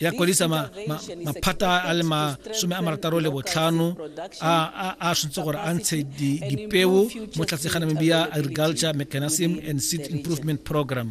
ya kwadisa maphata a le masome a marataro le botlhano a switse gore a ntshe dipeo mo tlase ga namibia agriculture mechanism and seed improvement program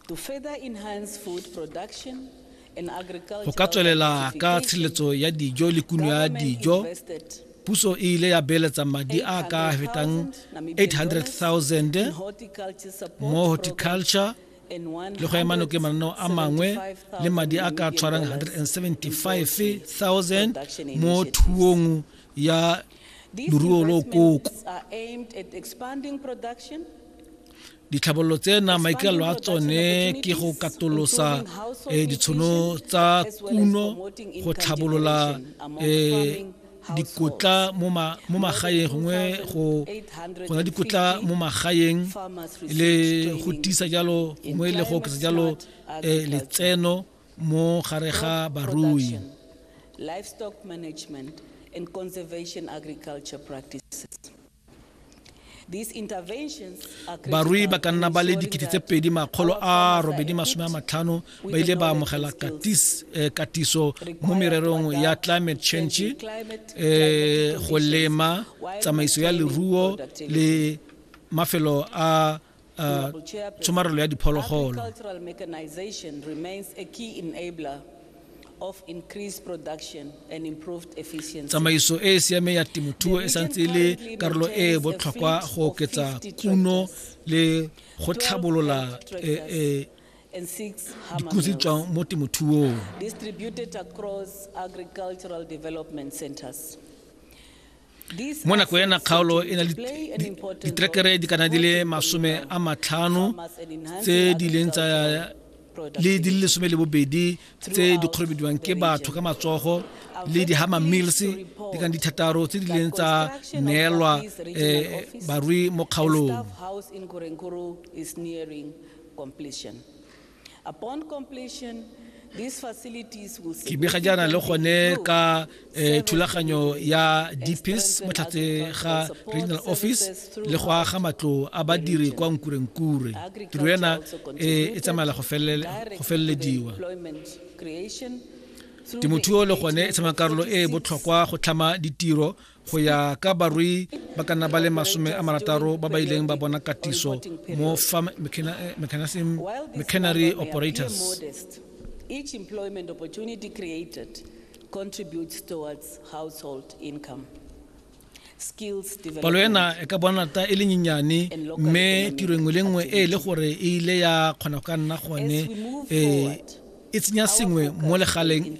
to further enhance food production Go ka tswelela ka tshiletso ya dijo le kuno ya dijo puso e ile ya beeletsa madi a ka fetang 800,000 mo horticulture le go ema noke mananeo a mangwe le madi a ka tshwarang 175,000 mo thuong ya loruo lo koko Ditlhabololo tsena maikaelelo a tsone ke go katolosa eh, ditshono tsa kuno go tlhabolola eh, dikotla mo magaeng gongwe go na dikotla mo magaeng le go tisa jalo gongwe le go oketsa jalo eh, letseno mo gare ga barui livestock management and conservation agriculture practices barui ba ka nna ba le dikete tse pedi makgolo a robedi masome a matlhano ba ile ba amogela eh, katiso mo mererong ya climate change um go lema tsamaiso ya leruo le mafelo a uh, tshomarelo ya diphologolo tsamaiso e e siameng ya temothuo e santse e le karolo e e botlhokwa go oketsa kuno le go tlhabolola e, e, dikotsi tswang mo temothuong mo nako ya nakgaolo e na le ditrekere di kana di le masome a matlhano tse di leng tsa le di le lesome le bobedi tse di kgorobediwang ke batho ka matsogo le di-hammer mills di kang dithataro tse di leng tsa neelwa um barui mo kgaolong ke bega jaana le gone ka eh, thulaganyo ya dpis mo tlhatse ga regional office le go aga matlo a badiri kwa nkurenkure tiro ena eh, e tsamaela go felelediwa temothuo le gone e tshama karolo e e botlhokwa go tlhama ditiro go ya ka barui ba ka nna ba le masome a marataro ba ba ileng ba bona katiso mo farm mecanary operators each employment opportunity created contributes towards household income palo ena e ka bona ta e le nyenyane mme tiro nngwe le nngwe e e le gore e ile ya kgona go ka nna gone e tsenya sengwe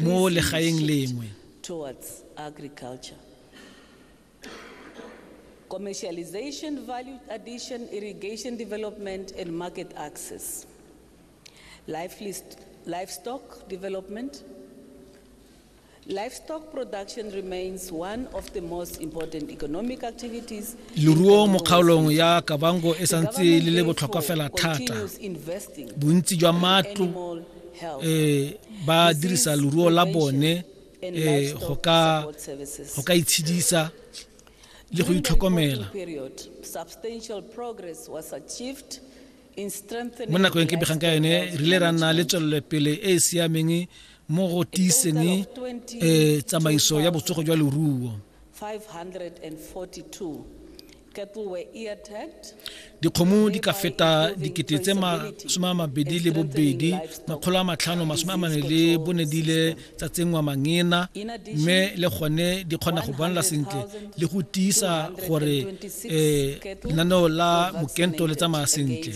mo legaeng lengwe towards agriculture. Commercialization, value addition, irrigation development, and market access. Livestock development. Livestock production remains one of the most important economic activities. Leruo mo kgaolong ya Kavango e santse le le botlhokwa fela thata. Bontsi jwa matlo eh ba dirisa leruo la bone eh go ka go ka itshedisa le go itlhokomela mo nakong ke begang ka yone re ile ra nna le tswelelopele e e siameng mo go tiiseng um tsamaiso ya botsogo jwa leruo dikgomo di ka feta dikete tse masome a mabedi le bobedi makgolo a matlhano masome a mane le bone di ile tsa tsenngwa mangena mme le gone di kgona go bonala sentle le go tiisa gore um lenaneo la mokento le tsamaya sentle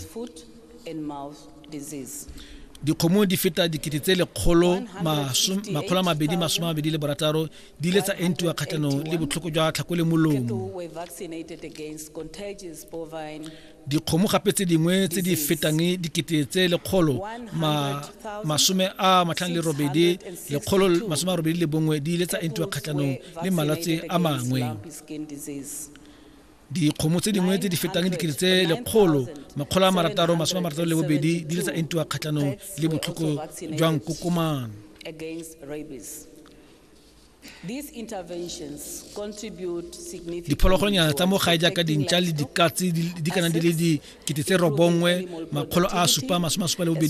dikgomo di feta dikete tse lekgolo makgolo a mabedi masome a mabedi le borataro di ile tsa entiwa kgatlhanong le botlhoko jwa tlhakole molomo dikgomo gape tse dingwe tse di fetang dikete tse lekgolo masome a matlhano le robedi lekgolo masome a robedi le bongwe di ile tsa entiwa kgatlhanong le malwetse a mangwe dikgomo tse dingwe tse di fetang dikete tse lekgolo makgolo a marataro masome a marataro le bobedi di ile tsa entiwa kgatlhanong le botlhoko jwa nkokomane diphologolonyana tsa mo gae jaaka dintša le dikatse di kana di le dikete tse robongwe makgolo a supa masome a supa le bobedi